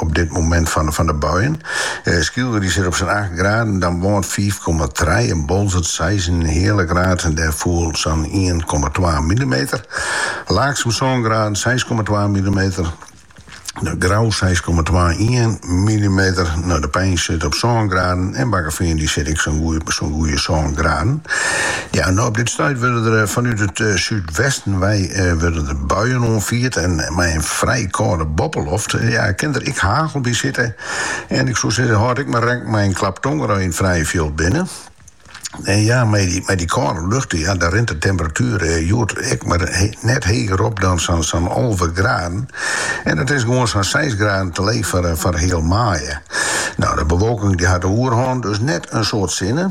op dit momint fan de buien. Skylge dy sit op sa'n acht graden, Damwâld fiif komma trije en Boalsert seis en in heale graad en dêr foel sa'n ien komma twa millimeter. Laaksum sân graden, seis komma twa millimeter. De Grou seis komma twa, ien millimeter. No, De Pein sit op sân graden en Bakkefean dy sit ek sa'n goeie sân graden. Ja, no op dit stuit wurde der fanút it súdwesten wei wurde der buien oanfierd en mei in Frij kâlde boppeloft, ja, it kin der ek hagel by sitte. En ik soe sizze, hâld ek mar rekken mei in klap tonger as je yn it frije fjild binne. En ja, mei dy kâlde lucht, ja, dan rint de temperatuer hjoed ek mar net heger op dan sa'n alve graden. En dat is gewoan sa'n seis graden te leech foar heal maaie. No, de bewolking dy hat de oerhân, dus net in soad sinne.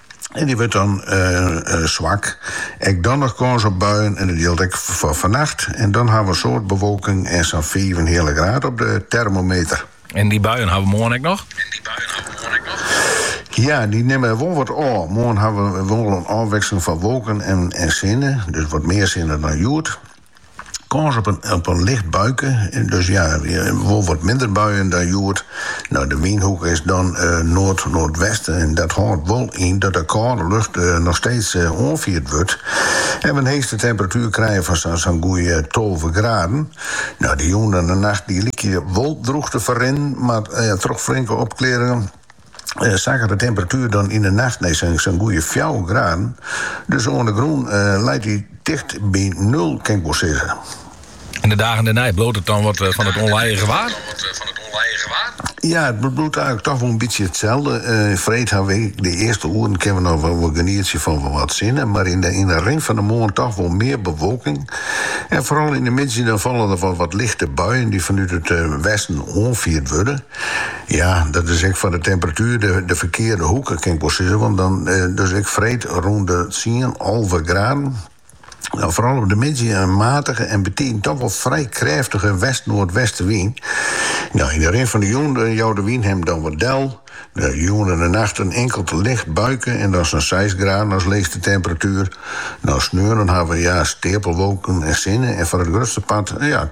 En dy wurdt dan swak. Ek dan noch kâns op buien en dat jildt ek foar fannacht. En dan hawwe we in soad bewolking en sa'n fiif en in heale graad op de termometer. En dy buien hawwe we moarn ek noch? Ja, dy nimme wol wat ôf. Moarn hawwe we wol in ôfwikseling fan wolken en sinne, dus wat mear sinne dan hjoed. Kâns op in licht buike, dus ja, wol wat minder buien dan hjoed. No, de wynhoek is dan noard-noardwesten en dat hâldt wol yn dat de kâlde lucht noch steeds oanfierd wurdt en we in heechste temperatuer krije fan sa'n goede tolve graden. No, de jûn en de nacht lykje wol drûch te ferrinnen, mar troch flinke opklearringen. sakket de temperatuer dan yn 'e nacht nei sa'n goede fjouwer graden. Dus oan de grûn leit er ticht by nul, kin ik wol sizze. En de dagen dêrnei, bliuwt it dan wat fan it ûnlijige waar? Ja, it bliuwt eigenlik toch wol in bytsje itselde. Freed hawwe we, de earste oeren kinne we noch wol genietsje fan wol wat sinne, mar yn de rin fan 'e moarn toch wol mear bewolking. En foaral yn 'e middei dan falle der wol wat lichte buien dy't fanút it westen oanfierd wurde. Ja, dat is ek foar de temperatuer de, de ferkearde hoeke, kin ik wol sizze. Want dan, eh, dus ek freed rûn de tsien, alve graden. Dan foaral op de middei een matige en betiden toch wol frij krêftige west-noardwestewyn. No, yn de rin fan de jûn eh, jouwt de wyn hem dan wat del. De jûn en de nacht in inkeld licht buike en dan sa'n 6 graden as leechste temperatuer. No, sneon dan hawwe we ja steapelwolken en sinne en foar it grutste part ja,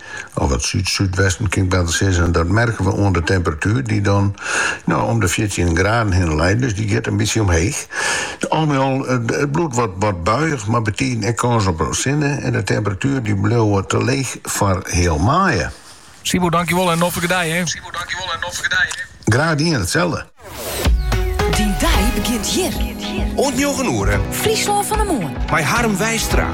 Of wat súdwesten kin 'k better sizze. En dat merke we oan de temperatuer dy't dan no om de fjirtjin graden hinne leit. Dus dy giet in bytsje omheech. Al mei al, it bliuwt wat buiich mei betiden ek kâns op sinne. En de temperatueren dy bliuwe te leech foar heal maaie. Sibo, dankjewol in noflike dei hè! Graach dien, itselde! Dyn dei begjint hjir! Oant njoggen oere. Fryslân fan 'e Moarn. Mei Harm Wijstra.